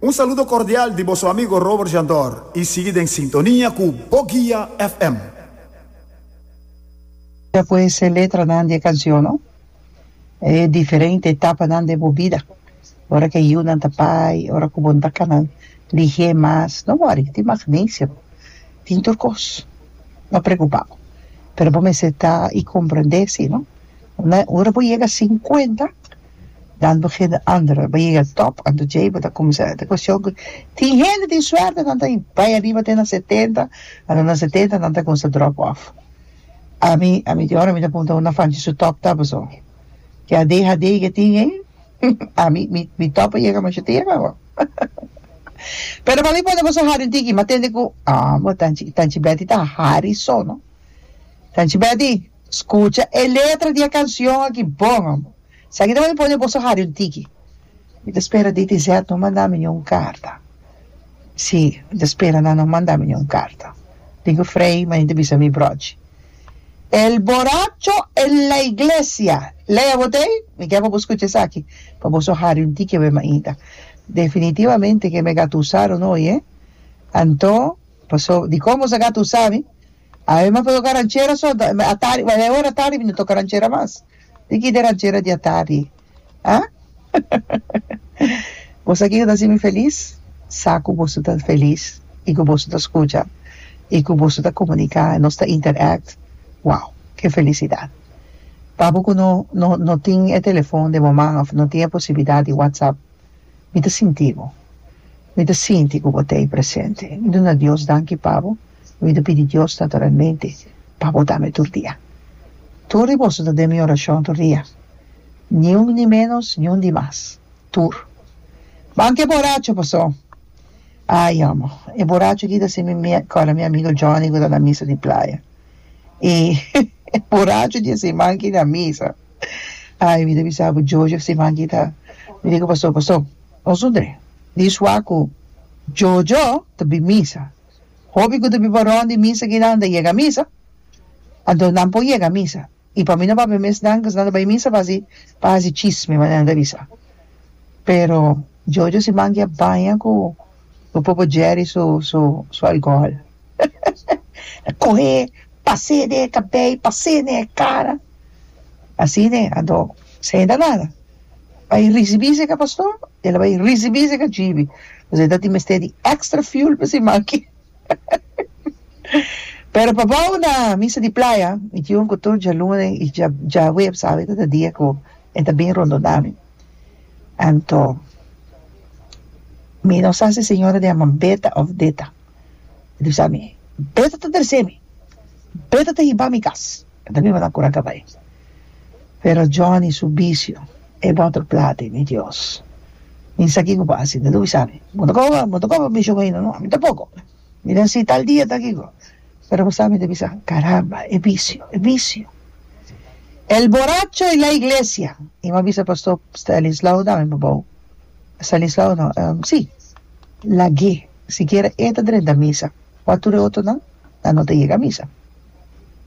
Un saludo cordial di boso amigo Robert Jandor y sigui den sintonia cu Bo Guia FM. Kia ku esei letranan di e kansion, no? E diferente etapanan den bo bida, ora ku e yunan ta bai, ora ku bo no ta kana ligi'é mas, no wòri, tin magnesio, tin tur kos, no preokupá bo, pero bo mester ta i komprendé si, no? Ora bo yega sinkuenta. Dan bo fe den André bo yega top anto djei bo ta cuminsa e cuestion cu tin hende tin suerte nan ta bai ariba te na setenta anto na setenta nan ta cuminsa drop off ami ami tin ora mi ta punta una fanchi su top ta paso ke adhd ke tin ei ami mi mi top a yega masha tera awa pero bali pone boso hari un tiki ma tende cu amo tanchi tanchi Betty ta hari so no tanchi Betty Scucha e letra di e cancion aki bon amo. Si aki ta manda pone boso hari un tiki. Mi ta spera DTZ no manda mi ni un carta. Si, mi ta spera nan no manda mi ni un carta. Dico Frei, ma e ta bisa mi brochi. El boracho en la iglesia! Lea bo t'ei? Mi ke pa bo scucha esaki pa boso hari un tiki awe mainta. Definitivamente ke mi a gatusa Ronoy, eh? Anto, paso, di con boso a gatusa mi? Ai mi a por toca ranchera so atari wai e ora atari mi no toca ranchera mas di ki de ranchera di atari ah bo sa kico ta haci mi feliz sa cu boso ta feliz y cu boso ta scucha y cu boso ta comunica y nos ta interact wow ke felicidad papo cu no no no tin e telefon de bo man of no tin e posibilidad di WhatsApp mi ta sinti bo mi ta sinti cu bo ta ahí presente mi ta duna Dios danki pa bo. Mi lo pidi Dios naturalmente pa bo dame tur dia. Tur di boso ta den mi orashon tur dia. Ni un ni menos, ni un di mas. Tur. Manke e boracho pasó. Ay, homo. E boracho aki ta haci mi acorda mi amigo Johnny cu ta na misa di playa. E boracho di haci manke na misa. Ay, mi ta bisa bo, Jojo, si manke ta mira cu pasó, pasó. Nos un dre. Di sua cu Jojo ta bin misa. Hopi ku ta biba rònt di misa ke nan ta yega misa, anto nan por yega misa. I pa mi no papia mes nan ku esnan ta bai misa pa hasi pa hasi chisme manera nan ta bisa. Pero Jojo si manki a baña ku ku popo Jerry su su su alkohòl a kohe pase den e kabei pase den e kara asina e anto esei ta nada. bai ricibi seca pastor el a bai ricibi seca cibi pasobra el ta tin mester di extra fuel pa si maki pero pa bao na misa di playa mi tin un cutor dja lunes y dja dja huebs awe ta ta dia cu e ta bini rondo nami anto mi no sa si señora ta yaman Beta of Deta e ta bisa mi Beta ta tresemi Beta ta hibami cas enta mi manda cura ca bai Pero Johnny su bicio e boto plati mi Dios. Mi sa kico pa haci. Dad Luis ami. Bo ta coba bo ta coba mision aina no? Ami tampoco. Mi ta haci tal dia tal kico. Pero bo sa mi ta bisa caramba e bicio e bicio. El boracho y la iglesia. Y bo a bisa Pastor Stanislao dame bo bou. Stanislao no ehm si lague sikiera e ta drenta misa. Wa tur e otro nan nan no ta yega misa.